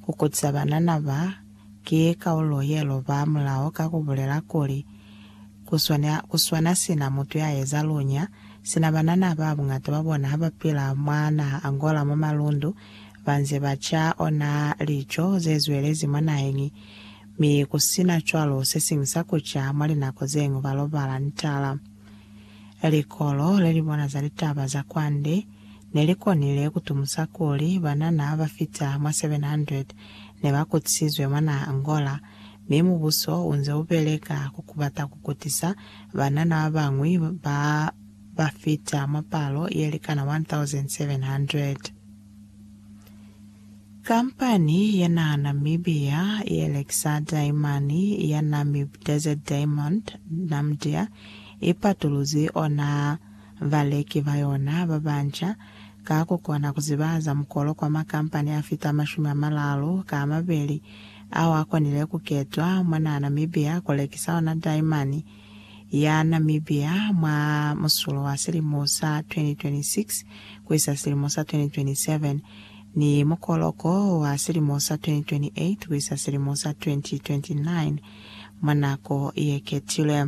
Ku kutisa banana ba ki kaulo ye loba mulao ka ku bulela kuli, Ku swana, ku swana sina mutu ya eza lunya, sina banana ba bungata ba bona ha ba pila mwa naha Angola mwa malundu, ba nze ba ca ona lico ze zwelezi mwa naheñi, mi ku sina cwalo se siñwi sa ku ca, mwa linako ze ñwi ba lobala ntala. Likolo le li bona za litaba za kwande, Ne li konile ku tumusa kuli banana ba fita mwa 700 ne ba kutisizwe mwa naha Angola, mi mubuso u nze u beleka ku kubata ku kutisa banana ba bañwi ba ba fita mwa palo ye likana 1,700. Kampani ya naha Namibia ye lekisa daimani ya Namib Desert Diamond, Namdia, i patuluzi ona Baleki ba yona ba banca ka ku kona ku zibahaza mukolo kwa makampani a fita mashumi a malalu ka a mabeli ao a konile ku ketwa mwa naha Namibia ku lekisa ona daimani ya Namibia mwa musulo wa silimo sa 2026 ku isa silimo sa 2027 ni mukoloko wa silimo sa 2028 ku isa silimo sa 2029 mwa nako ye ketilwe.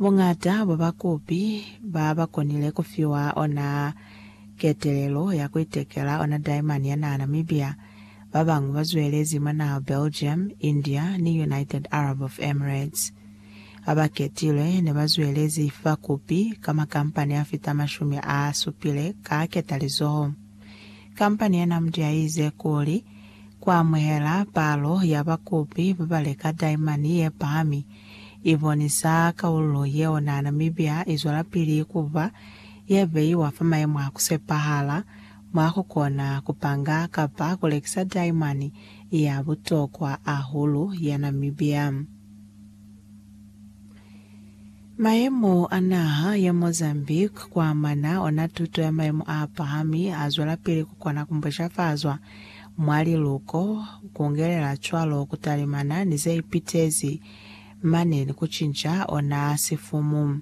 Boñata bwa bakopi ba ba konile ku fiwa ona ketelelo ya ku itekela ona daimani ya naha Namibia. Ba bañwi ba zwelezi mwa naha Belgium, India, ni United Arab of Emirates. Ba ba ketilwe ne ba zwelezi fa kopi ka makampani a fita mashumi a supile ka ketalizoho. Kampani ya Namdia i ize kuli, Ku amuhela palo ya bakopi ba ba leka daimani ye pahami, i bonisa kaululo yeo naa Namibia i zwelapili ku ba ye beiwa fa maemo a ku sepahala, mwa ku kona ku panga kapa ku lekisa daimani ya butokwa ahulu ya Namibia. Maemo a naha ya Mozambique ku amana ona tuto ya maemo a pahami a zwelapili ku kona ku mbushafaza mwa liluko, kungelela cwalo kutalimana ni zeipitezi mane ni kucinca ona sifumu.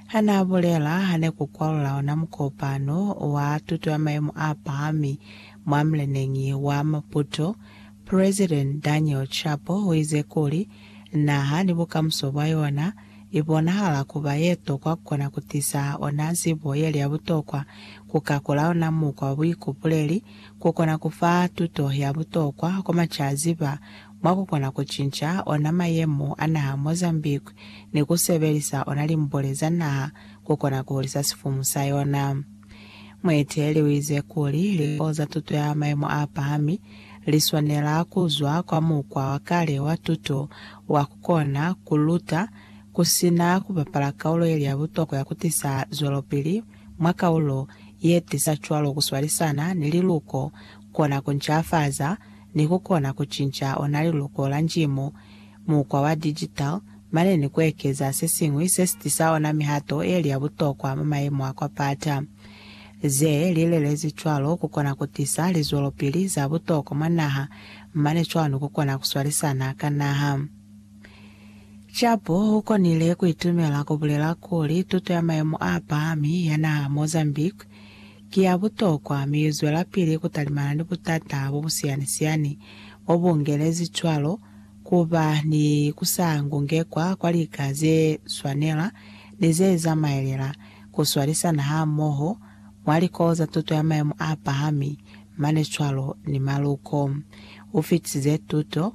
Hanaabulela hane kukwalula ona mukopano wa tuto ya maimo aapahami mwa mleneñi wa Maputo, President Daniel Chapo uize kuli, Naha ni bukamuso bwa yona ibonahala kuba yetokwa kukona kutisa ona zibo yeli ya butokwa, kukakula ona mukwa wa buikupuleli ku kona ku fa tuto ya butokwa kwa macaziba mwa ku kona ku cinca ona mayemo a naha Mozambique ni ku sebelisa ona limbole za naha ku kona ku hulisa sifumu sa yona. Mueteleli u ize kuli likolo za tuto ya mayemo a pahami li swanela ku zwa kwa mukwa wa kale wa tuto wa ku kona ku luta ku si na ku bapala kaulo ye li ya butokwa ya ku tisa zwelopili mwa kaulo ye tiza cwalo ku swalisana ni liluko kona ku ncafaza ni ku kona ku cinca ona liluko la Njimo, mukwa wa digital, mane ni ku ekeza se siñwi se si tisa ona mihato ye li ya butokwa mwa mayemo a kwa pata. Ze li lelezi cwalo ku kona ku tisa lizwelopili za butokwa mwa naha mane cwalo ni ku kona ku swalisana ka naha. Jabu u konile ku itumela ku bulela kuli tuto ya mayemo a pahami ya naha Mozambique ki ya butokwa mi i zwelapili ku talimana ni butata bo bu siyani-siyani bo bu ngelezi cwalo ku ba ni ku sa ngungekwa kwa lika ze swanela ni ze zamaelela ku swalisana hamoho mwa likolo za tuto ya mayemo a pahami mane cwalo ni maluko. U fitisize tuto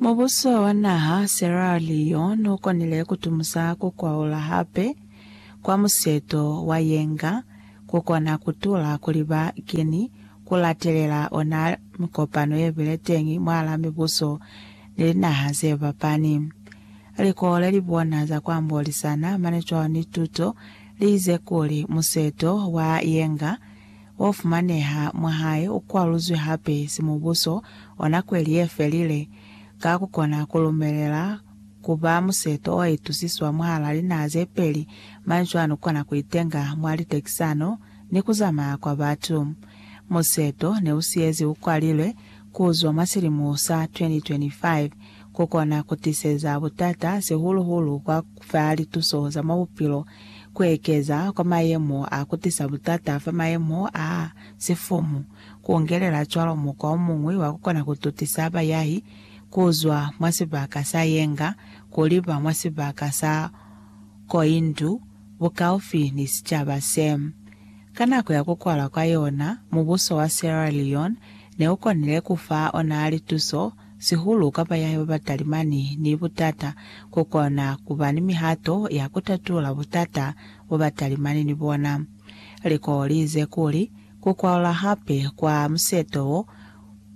Mubuso wa naha Sierra Leone ukonile kutumusa kukwaula hape kwa museto wa yenga kukona kutula kuli ba keni kulatelela ona mikopano yebile teñi mwala mibuso ni linaha zefapani. Likolo lelibona za kuambolisana mane cwalo ni tuto liize kuli museto wa yenga o fumaneha mwa hae u kwaluzwi hape si mubuso o nako ye li ye felile, ka ku kona ku lumelela ku ba museto o itusiswa mwahal'a linaha ze peli, manzwani u kona ku itenga mwa litekisano ni ku zamaya kwa batu. Museto ne u siyezi u kwalilwe ku zwa mwa silimo sa 2025. ku kona ku tiseza butata, sihulu-hulu kwa fa lituso za mwa bupilo. Ku ekeza kwa mayemo a ku tisa butata fa mayemo a sifumu ku ngelela cwalo mukwa o muñwi wa ku kona ku tutisa bayahi ku zwa mwa sibaka sa yenga ku liba mwa sibaka sa koindu bukaufi ni sicaba se. Ka nako ya ku kwalwa kwa yona, mubuso wa Sierra Leone ne u konile ku fa ona lituso sihulu ka ba yahe ba ba talimani ni butata, ku kona ku ba ni mihato ya ku tatula butata bo ba talimani ni bona. Liko li ize kuli, Ku kwalula hape kwa museto wo,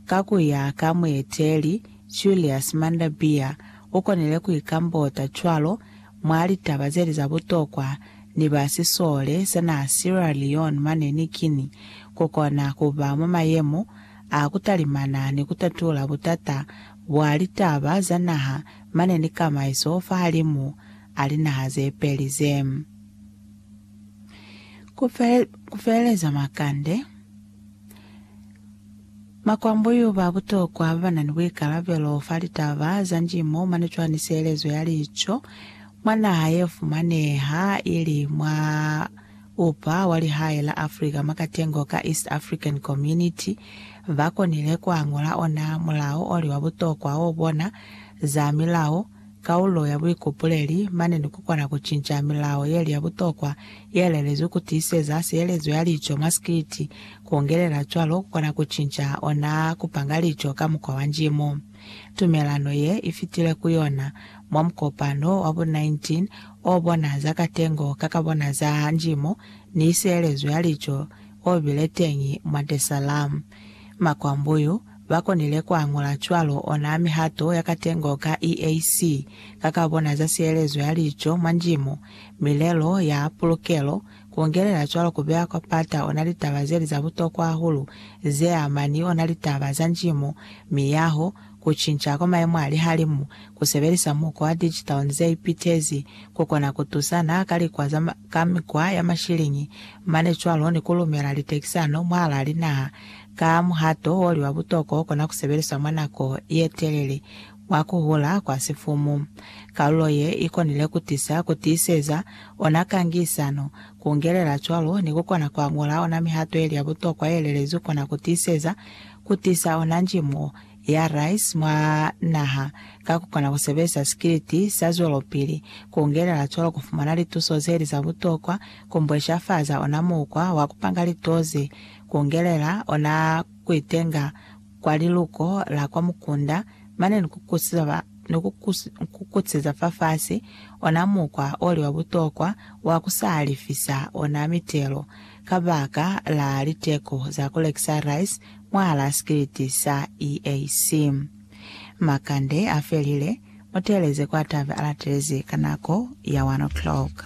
ka ku ya ka mueteli Julius Mander Beer, u konile ku ikambota cwalo mwa litaba ze li za butokwa ni ba sisole sa naha Sierra Leone mane ni Guinea, ku kona ku ba mwa mayemo a ku talimana ni ku tatula butata bwa litaba za naha mane ni kamaiso fahalimu a linaha ze peli ze. Ku feleleza makande, makwambuyu ba butokwa ba ba na ni buikalabelo fa litaba za njimo mane cwa ni sielezo ya lico mwa naha ye fumaneha ili mwa Upa wa lihae la Afrika mwa katengo ka East African Community ba konile ku añola ona mulao o li wa butokwa o bona za milao, kaulo ya buikupuleli, mane ni ku kona ku cinca milao ye li ya butokwa ye lelezwi ku tiiseza sielezo ya lico mwa sikiti, ku ongelela cwalo ku kona ku cinca ona ku panga lico ka mukwa wa njimo. Tumelano ye i fitile ku yona mwa mukopano wa bo 19 o bona za katengo ka ka bona za njimo ni sielezo ya lico o bile teñi mwa Desallam. Makwambuyu ba konile ku añula cwalo ona mihato ya katengo ka EAC ka ka bona za sielezo ya lico mwa njimo, milelo ya pulukelo, Kuongelela cwalo kubeya kwa pata ona litaba zeli za butokwa hahulu zeama ni ona litaba za njimo, miyaho, kucinca kwa maemo a lihalimu. Kusebelisa mukwa wa digital ni zeipitezi kukona kutusana ka likwa za ka mikwa ya mashiliñi mane cwalo ni kulumela litekisano mwahalaa linaha ka muhato woli wa butokwa okona kusebeliswa mwa nako yetelele. wa ku hula kwa sifumu. Kalulo ye i konile ku tisa ku tiiseza ona kangisano, ku ngelela cwalo ni ku kona kwa ñola ona mihato ye li ya butokwa ye lelezwi kona ku tiiseza ku tisa ona njimo ya rice mwa naha ka ku kona ku sebelisa sikiliti sa zwelopili, ku ngelela cwalo ku fumana lituso ze li za butokwa, ku mbweshafaza ona mukwa wa ku panga litoze, ku ngelela ona ku itenga, kwa liluko la kwa mukunda, mane ni kukusiza ba, ni kukukutsiza fafasi, ona mukwa oli wa butokwa wa ku sa lifisa ona mitelo, kabaka la liteko za ku lekisa rice mwahalaa sikiliti sa EAC. Makande a felile, muteeleze kwa tabe a latelezi ka nako ya one o'clock.